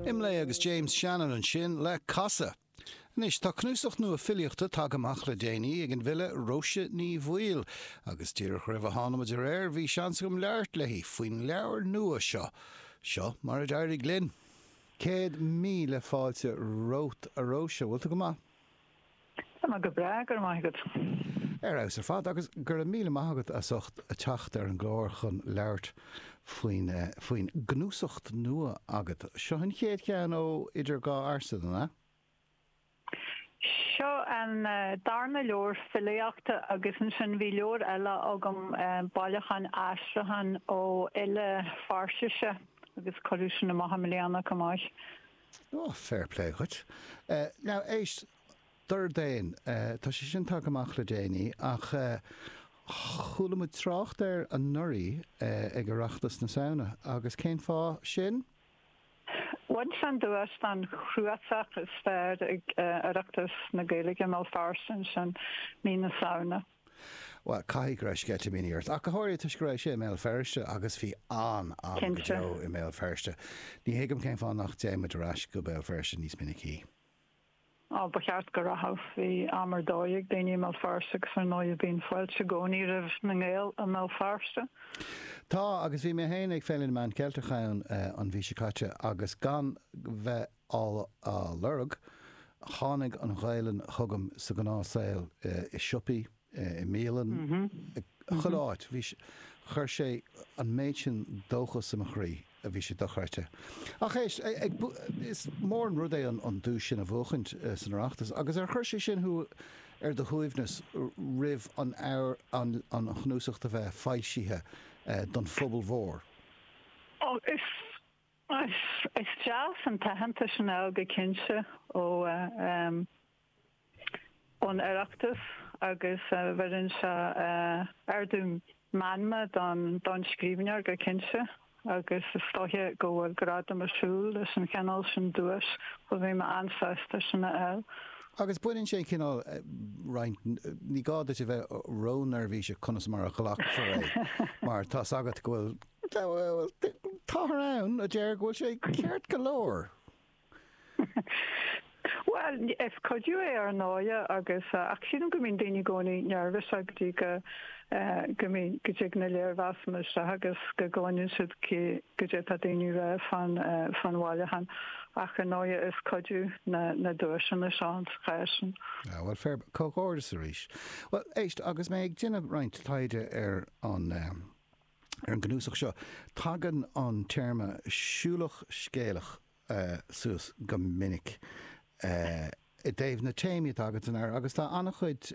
Imlay agus James Shannon ansin le casadh. Anois, tá cnuasach nua filíochta tagtha amach le déanaí ag an bhfile Róise Ní Bhaoill, agus díreach roimh a thánamar ar aer, bhí seans agam labhairt léi faoin leabhar nua seo. Seo mar a d'éirigh linn. Céad míle fáilte romhat, a Róise. Bhfuil tú go maith? Tá mé go breá, go raibh maith agat. Ar fheabhas ar fad, agus go raibh míle maith agat as ucht teacht ar an gclár chun labhairt faoin faoin gcnuasacht nua agat. Seo an chéad cheann ó Idir Dhá Ghlas, an ea? Seo an darna leabhar filíochta agus ansin bhí leabhar eile agam, bailiúchán aistriúchán ó fhile Peirsise agus cuireadh sin amach i mbliana chomh maith. Ó, fair play dhuit. Now, éist, Dordéan, tá sé sin tagtha amach le déanaí ach chuala muid trácht air anuraidh ag Oireachtas na Samhna agus cén fáth sin? Bhain sé an duais don chnuasach is fearr ag Oireachtas na Gaeilge, i mBéal Feirste ansin, sin mí na Samhna. Bhuel, caithfidh go raibh sceitimíní ort, ach go háirithe toisc go raibh sé i mBéal Feirste agus bhí an-am go deo i mBéal Feirste. Ní thuigim cén fáth nach dtéann muid ar ais go Béal Feirste níos minicí. Á, ba cheart go rachadh. Bhí am ar dóigh ag daoine i mBéal Feirste agus ar ndóigh bíonn fáilte i gcónaí roimh na nGael i mBéal Feirste. Tá, agus bhí mé féin ag Féile na Meán Ceilteach ann an mhí seo caite agus gan bheith á lorg. Tháinig an Ghaelainn chugam sa ghnáthshaol, i siopaí, i mbialanna, chuile áit. Chuir sé an méid sin dóchas i mo chroí, bhí sé dochreidte. Ach éist, is mór an rud é an duais sin a bhuachaint san Oireachtas, agus ar chuir sé sin thú ar do shuaimhneas roimh an chnuasach do bheith foilsithe don phobal mhór? Is deas an t-aitheantas sin a fháil go cinnte ó ón Oireachtas agus bheireann sé ardú meanma don scríbhneoir go cinnte agus is dóiche go bhfuil gradam ag siúl leis an chineál sin duais so bhí mé an-sásta sin a fháil. Agus baineann sé an cineál roinnt, ní gá duit a bheith ró-neirbhíseach conas mar a ghlacfar leis mar tá's agat go bhfuil Táthar ann a deir go bhfuil sé ceart go leor. Bhuel, is cuidiú é ar ndóigh agus, ach sílim go mbíonn daoine i gcónaí neirbhíseach go dtí go, go mbíonn, go dtig na léirmheasanna isteach agus go gcluineann siad cad é atá daoine a rá fan, fan bhailiúchán. Ach ar ndóigh is cuidiú na, na duaiseanna leis sin sa chás sin. Ah bhuel, fair, comhghairdeas arís. Bhuel éist, agus mé ag déanamh roinnt taighde ar an, Ar an gcnuasach seo, tagann an téarma 'siúlach scéalach' suas go minic i dtaobh na téamaí atá agat san áireamh agus tá an-chuid,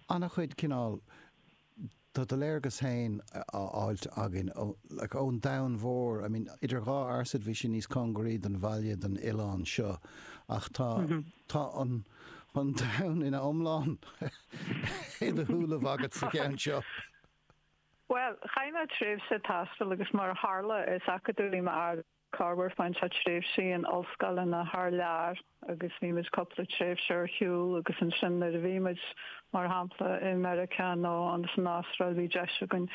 an-chuid cineál de do léargas féin á fháilt againn ón domhan mhór, I mean, Idir Dhá Fhearsaid bhí sé níos cóngaraí don bhaile, don oileán seo ach tá, tá an. an domhan ina iomlán i do shúile agat sa cheann seo. Bhuel, chaith mé tréimhse taistil agus mar a tharla, is acadúlaí m'athair. Chaith seisean tréimhsí in ollscoileanna thar lear agus bhí muid cúpla tréimhse ar shiúl agus ansin nuair a bhí muid, mar shampla, i Meiriceá nó insan Astráil bhí deis againn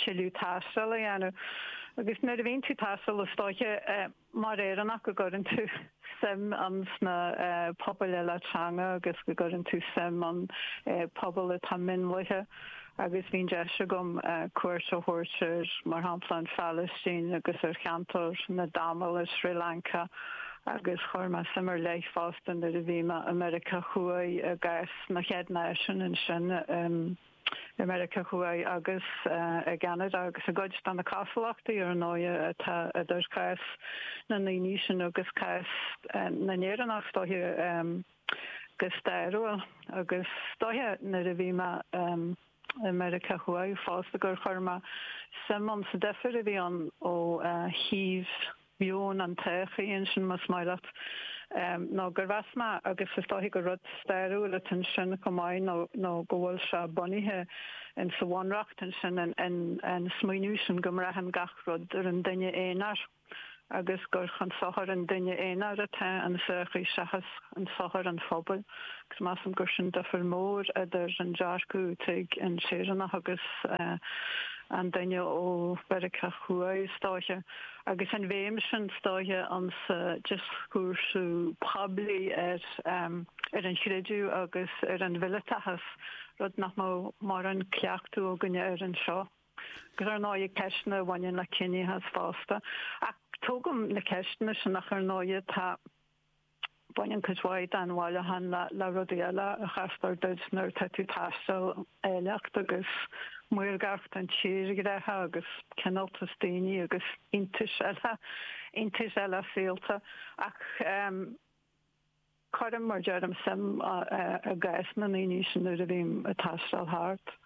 tuilleadh taistil a dhéanamh. Agus nuair a bhíonn tú ag taisteal is dóiche eh. Mar Éireannach go gcuireann tú suim insna pobail eile teanga agus go gcuireann tú suim ins na pobail atá mionlaithe agus bhí an deis agam cuairt a thabhairt ar mar shampla an Phalaistín agus ar cheantar na dTamalach i Sri Lanka agus chuir mé suim ar leith fosta nuair a bhí mé i Meiriceá Thuaidh i gcás na chéad náisiún ansin i i Meiriceá Thuaidh agus i gCeanada agus i gcuid de na cosúlachtaí, ar ndóighe, atá idir chás na ndaoiní sin agus cás na nÉireannach, is dóiche, go stairiúil. Agus is dóiche, nuair a bhí mé i Meiriceá Thuaidh fosta, gur chuir mé suim insa difear a bhí ann ó thaobh, meon an tsochaí ansin más maith leat nó gur mheas mé, agus is dóiche gur rud stairiúil atá ansin chomh maith nó go bhfuil sé bunaithe insa Bhunreacht ansin an smaoineamh sin go mbraitheann gach rud ar an duine aonair agus gur chun sochair an duine aonair atá an sochaí seachas chun sochair an phobail agus measaim gur sin difear mór idir an dearcadh atá ag an Éireannach agus an duine ó Mheiriceá Thuaidh is dóiche. Agus an bhéim sin is dóiche insa dioschúrsa poiblí ar an chreideamh agus ar an mhileatachas, rud nach mbeadh mórán cleachtadh againne air anseo. Agus ar ndóighe ceisteanna a bhaineann le ciníochas fosta. Ach tógaim na ceisteanna sin ach ar ndóighe tá. Baineann cuid mhaith den bhailiúchán le rudaí eile a chastar duit nuair atá tú ag taisteal, áilleacht agus maorgacht an tírdhreacha agus cineáltas daoine agus iontais eile, iontais eile saolta. Ach cuirim, mar deirim, suim i gcás na ndaoine sin nuair a bhím ag taisteal thart.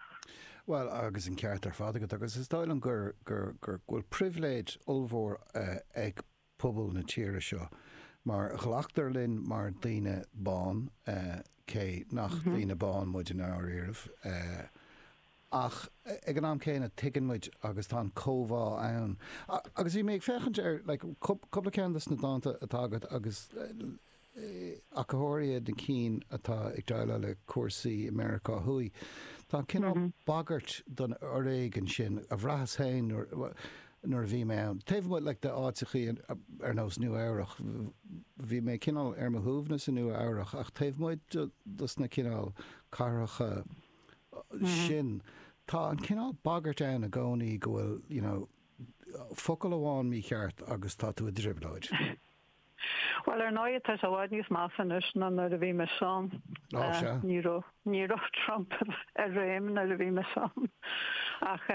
Bhuel, agus an ceart ar fad agat, agus is dóigh liom go bhfuil pribhléid ollmhór ag. pobal na tíre seo. Mar glactar linn mar daoine bán, cé nach daoine bána muid i ndáiríre, ach ag an am céanna tuigeann muid agus tá an chomhbhá ann. Agus bhí mé ag féachaint ar, like, cúpla ceann de sna dánta atá agat agus, ach go háirithe na cinn atá ag déileáil le cúrsaí i Meiriceá Thuaidh. Tá an cineál bagairt don fhoréigean sin, a bhraitheas féin nuair a bhí mé ann. Taobh amuigh like de áiteachaí ar nós Nua Eabhrach, bhí mé cineál ar mo shuaimhneas i Nua Eabhrach ach taobh amuigh dos na cineál cathracha sin, tá an cineál bagairt ann i gcónaí go bhfuil you know focal amháin mícheart agus tá tú i dtrioblóid. Bhuel, ar ndóigh, tá sé i bhfad níos measa anois ná nuair a bhí mise ann. Ó, sea. Ní raibh Trump i réim nuair a bhí mise ann. Ach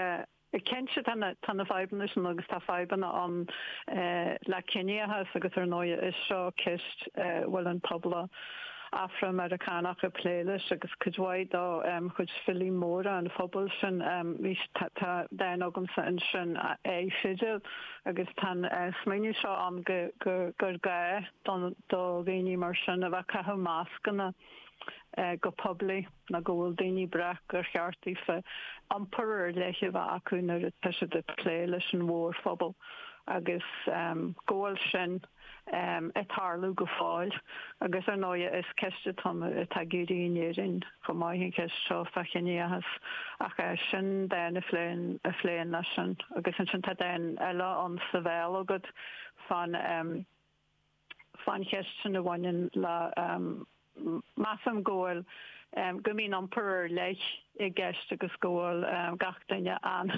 cinnte tá na fadhbanna sin agus tá fadhbanna ann le ciníochas agus ar ndóigh is seo ceist a bhfuil an pobal Afra-Meiriceánach ag plé leis agus cuid mhaith de chuid filí móra an phobail sin. Tá dán agamsa ansin, A Fidil. agus tá an smaoineamh seo ann gur gá do dhaoine mar sin a bheith ag caitheamh mascanna go poiblí nó go bhfuil daoine ag brath gur cheart daofa iompar ar leith a bheith acu nuair atá siad ag plé leis an mhórphobal agus go bhfuil sin ag tarlú go fóill agus ar ndóigh is ceist atá ag éirí in Éirinn chomh maith an cheist seo fá chiníochas ach sin dán a phléann leis sin agus ansin tá dán eile ansin Béal agus fán fán cheist sin a bhaineann le measaim go bhfuil go mbíonn iompar ar leith i gceist agus go bhfuil gach duine an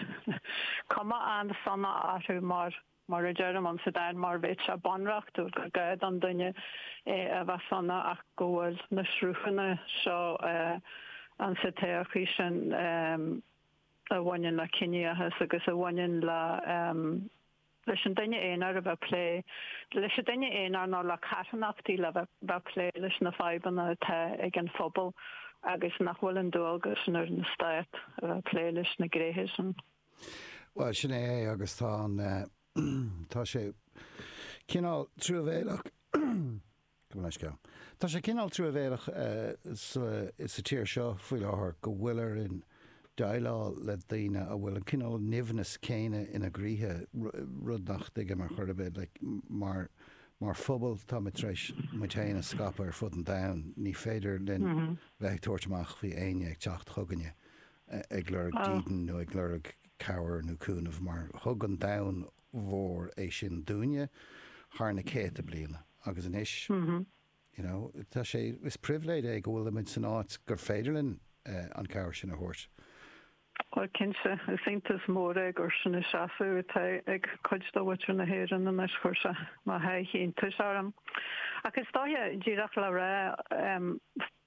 chuma an-sona orthu mar Mar a deirim, an sa dán mar a bheadh sé bunreachtúil gur gá don duine a bheith sona ach go bhfuil na sruthanna seo ann sa tsochaí sin a bhaineann le ciníochas agus a bhaineann le leis an duine aonair a bheith plé leis an duine aonair nó le carthanachtaí le bheith plé leis na fadhbanna atá ag an phobal agus nach bhfuil an dualgas sin ar an Stát a bheith plé leis na gnéithe sin. Bhuel sin é é agus tá an tá sé cineál truamhéileach go mbeidh sceal tá sé cineál truamhéileach sa sa tír seo faoi láthair go bhfuilimid ag déileáil le daoine a bhfuil an cineál nimhneas céanna ina gcroíthe rud nach dtuigim ar chor ar bith like mar mar phobal táimid tar éis muid féin a scaipeadh ar fud an domhain ní féidir linn bheith ag tabhairt amach faoi éinne ag teacht chugainne ag lorg dídean nó ag lorg cabhair nó cúnamh mar thug an domhan mhór é sin dúinne thar na céadta bliana agus anois you know tá sé, is pribhléid é go bhfuilimid san áit gur féidir linn an chabhair sin a thabhairt. Bhuel cinnte, is iontas mór é gur sin an seasamh atá ag cuid de mhuintir na hÉireann anois, cuireann sé mo sháith iontais orm. Ach is dóiche, díreach le rá,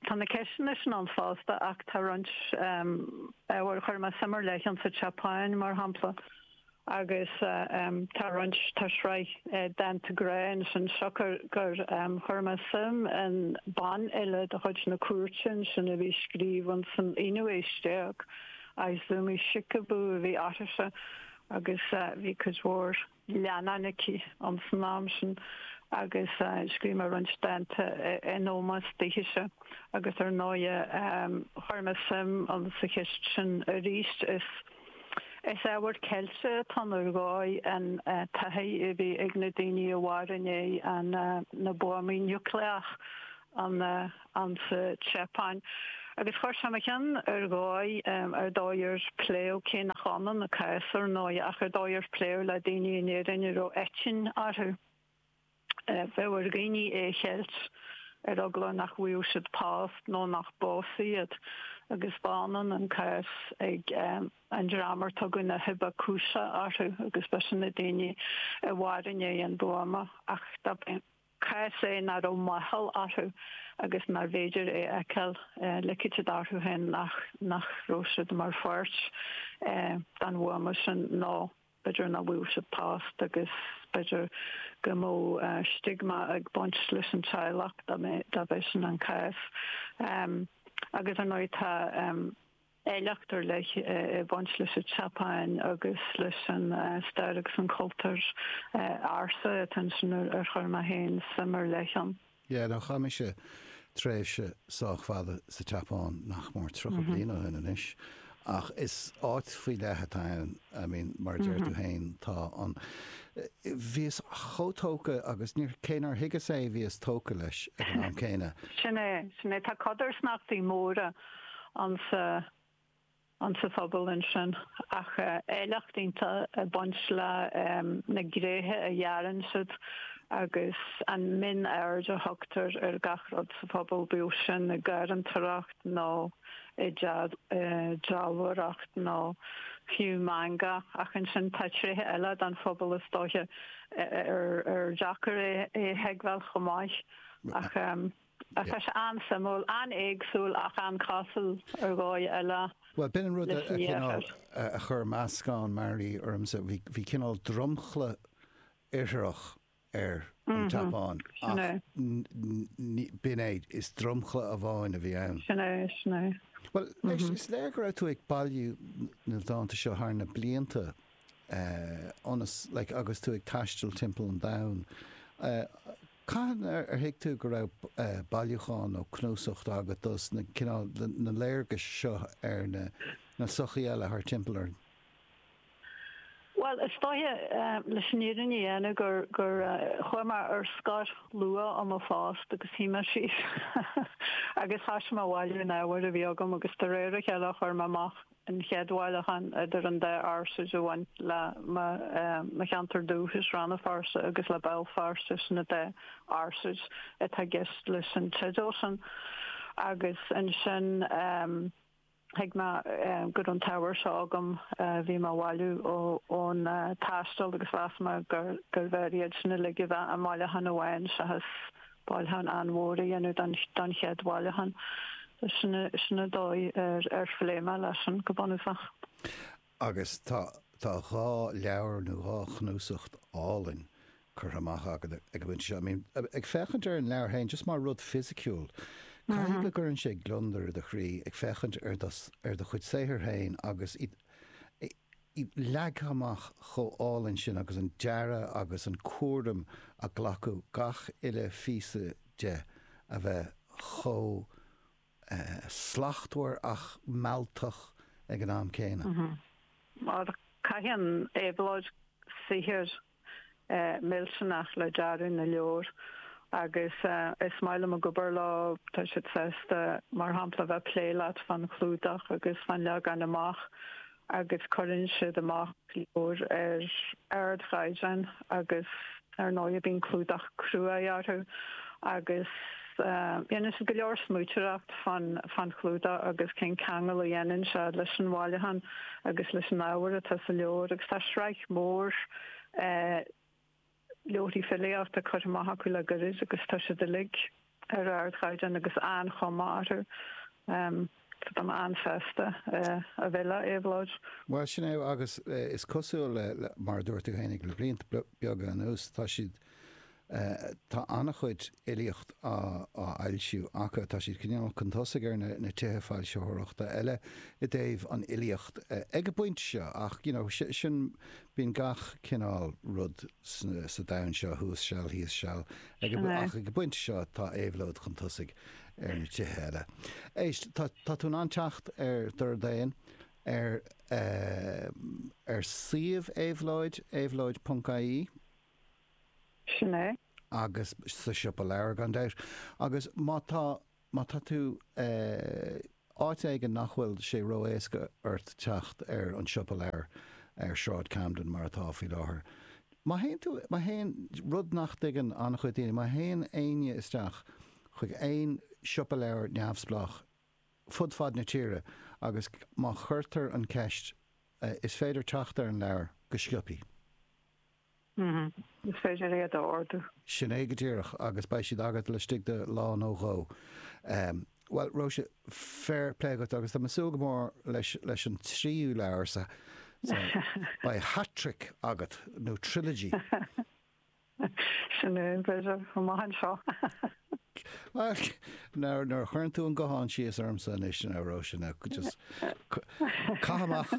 Tá na ceisteanna sin ann fosta ach tá roinnt ábhar, chuir mé suim ar leith ann sa tSeapáin mar shampla agus tá roinnt, tá sraith dánta grá ansin siocair gur chuir mé suim i mbanfhile de chuid na cúirte ansin a bhí ag scríobh insan aonú aois déag, Izumi Shikibu a bhí uirthise agus bhí cuid mhór. leannán aici insan am sin agus scríobh mé roinnt dánta in ómós dithise agus ar ndóighe chuir mé suim sa cheist sin arís. Is ábhar ceilte atá ann ar dhóigh an taithí a bhí ag na daoine a mhair i ndiaidh na buamaí núicléacha ann insa tSeapáin agus chuir sé i mo cheann ar dhóigh an dóigh ar pléadh cé nach ionann a cás ar ndóigh ach an dóigh ar pléadh le daoine in Éirinn a raibh eitinn orthu. Bíodh ar dhaoine é a cheilt ar eagla nach bhfaigheadh siad post nó nach bpósfaí iad agus ba ionann an cás ag an dream ar tugadh na hibakusha orthu agus b'shin na daoine a mhair i ndiaidh an bhuama ach dob cás é nach raibh máchail orthu agus nár bhféidir é a fheiceáil ligeadh siad orthu féin nach raibh siad mar pháirt den bhuama sin nó b'fhéidir nach bhfaigheadh siad post agus b'fhéidir go mbeadh stiogma ag baint leis an teaghlach dá mb'é sin an cás agus ar ndóigh tá áilleacht ar leith ag baint leis an tSeapáin agus leis an stair agus an cultúr ársa atá ansin ar chuir mé féin suim ar leith ann. Yeah, no, chaith mise tréimhse sách fada sa tSeapáin, nach mór tríocha bliain ó shin anois, ach is áit faoi leith atá ann, I mean, mar a deir tú féin, tá an, bhíos chomh tógtha agus níor, cé nár thuigeas é bhíos tógtha leis ag an am céanna. Sin é, sin é, tá codarsnachtaí móra. insa insa phobal ansin ach áilleacht iontach ag baint le na gréithe a dhearann siad agus an mhionaird a thugtar ar gach rud sa phobal bíodh sin i ngarraíodóireacht nó i ndealbhóireacht nó fiú manga ach ansin tá tréithe eile den phobal is dóiche ar deacair é a thuigbheáil chomh maith ach Tá sé an-suimiúil, an-éagsúil ach an-chosúil ar dhóigh eile. Bhuel, b'in an rud cineál a chuir meascán mearaí ormsa. Bhí cineál dromchla Iartharach ar an tSeapáin ach b'in é, is dromchla amháin a bhí ann. Sin é, sin é. Bhuel, anois, is léir go raibh tú ag bailiú na ndánta seo thar na blianta ionas, like, agus tú ag taisteal timpeall an domhain. Cathain ar thuig tú go raibh bailiúchán nó cnuasacht agat de na cineál, na léargais seo ar na na sochaithe eile thar timpeall orainn? Bhuel, is dóiche, leis an fhírinne a dhéanamh, gur, gur chuaigh mé ar scor luath ó mo phost agus shuigh mé síos agus thoisigh mé a bhailiú an ábhair a bhí agam agus de réir a chéile chuir mé amach an chéad bhailiúchán idir an dá fhearsaid a bhain le mo cheantar dúchais, Rann na Feirste agus le Béal Feirste sin an dá fhearsaid atá i gceist leis an teideal sin. Agus ansin thuig mé go raibh an t-ábhar seo agam a bhí mé a bhailiú ón taisteal agus mheas mé gurbh fhearr iad sin a ligean i mbailiúchán amháin seachas bailiúchán an-mhór a dhéanamh don chéad bhailiúchán. Sin an dóigh ar phléigh mé leis sin go bunúsach. Agus tá dhá leabhar nó dhá chnuasacht álainn curtha amach agat ag an bpointe seo. I mean, ag féachaint ar an leabhar féin, just mar rud fisiciúil, caithfidh go gcuireann sé gliondar i do chroí ag féachaint ar do chuid saothair féin agus iad, é leagtha amach chomh álainn sin agus an dearadh agus an cúram a glacadh le gach uile phíosa de a bheith chomh slachtmhar ach mealltach ag an am céanna. Mar caitheann Éabhlóid saothar millteanach le dearadh na leabhar agus is maith liom a bheith ag obair leo, tá siad sásta mar shampla a bheith ag plé leat fán chlúdach agus fán leagan amach agus cuireann siad amach leabhair ar ardchaighdeán agus ar ndóigh bíonn clúdach cruaidh orthu agus Déanann siad go leor smaointeoireacht fán chlúdach agus cén ceangal a dhéanann sé leis an bhailiúchán agus leis an ábhar atá sa leabhar agus tá sraith mhór leabharthaí filíochta curtha amach acu le gairid agus tá siad uilig ar ardchaighdeán agus an-chuma orthu. An ann feasta a bheidh le Éabhlóid? Bhuel, sin é, agus is cosúil le, mar a dúirt tú fhéinig le blianta beaga anuas, tá siad, tá an-chuid fhilíocht á fhoilsiú acu, tá siad cineál chun tosaigh ar na tithe foilsitheoireachta eile i dtaobh an fhilíocht ag an bpointe seo ach, you know, sin, bíonn gach cineál rud sa domhan seo, thuas seal, thíos seal, ach ag an bpointe seo tá Éabhlóid chun tosaigh ar na tithe eile. Éist, tá tú in ann teacht ar Dordán ar ar suíomh Éabhlóid, éabhlóid ponc ie. Sin é. Agus sa siopa leabhar gan dabht. Agus má tá, má tá tú eh. Áit éigin nach bhfuil sé ró-éasca ort teacht ar an Siopa Leabhar ar Sráid Camden mar atá faoi láthair. Má théann tú, má théann, rud nach dtuigeann an-chuid daoine, má théann éinne isteach chuig aon siopa leabhar neamhspleách fud fad na tíre agus má chuirtear an cheist is féidir teacht ar an leabhar go sciobtha. Hm, is féidir iad a ordú. Sin é go díreach agus beidh siad agat laistigh de lá nó dhó. Em, bhuel, Róise, fair play dhuit agus tá mé súil go mór leis, leis an tríú leabhar sa, sa, beidh hat-trick agat, nó trilogy. Sin é, b'fhéidir, chomh maith anseo. Bhuel, nuair, nuair a chuireann tú an guthán síos ormsa anois ná, Róise, ná just, ca, caith amach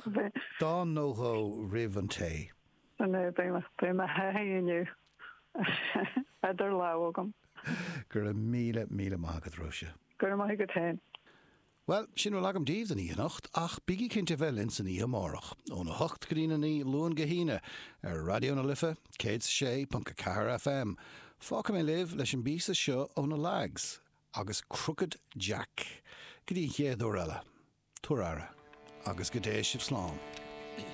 dán nó dhó roimh an tae. Sin é beidh ceann amháin inniu idir lámha agam. Go raibh míle, míle maith agat, Róise. Go raibh maith agat féin. Bhuel, sin a bhfuil agam daoibh don oíche anocht, ach bígí cinnte a bheith linn san oíche amárach, óna hocht go dtí a naoi, Luan go hAoine, ar Raidió na Life, céad is a sé ponc a ceathair FM. Fágfaidh mé libh leis an bpíosa seo ó na Lags, agus Crooked Jack. Go dtí an chéad uair eile, tugaigí aire, agus go dté sibh slán.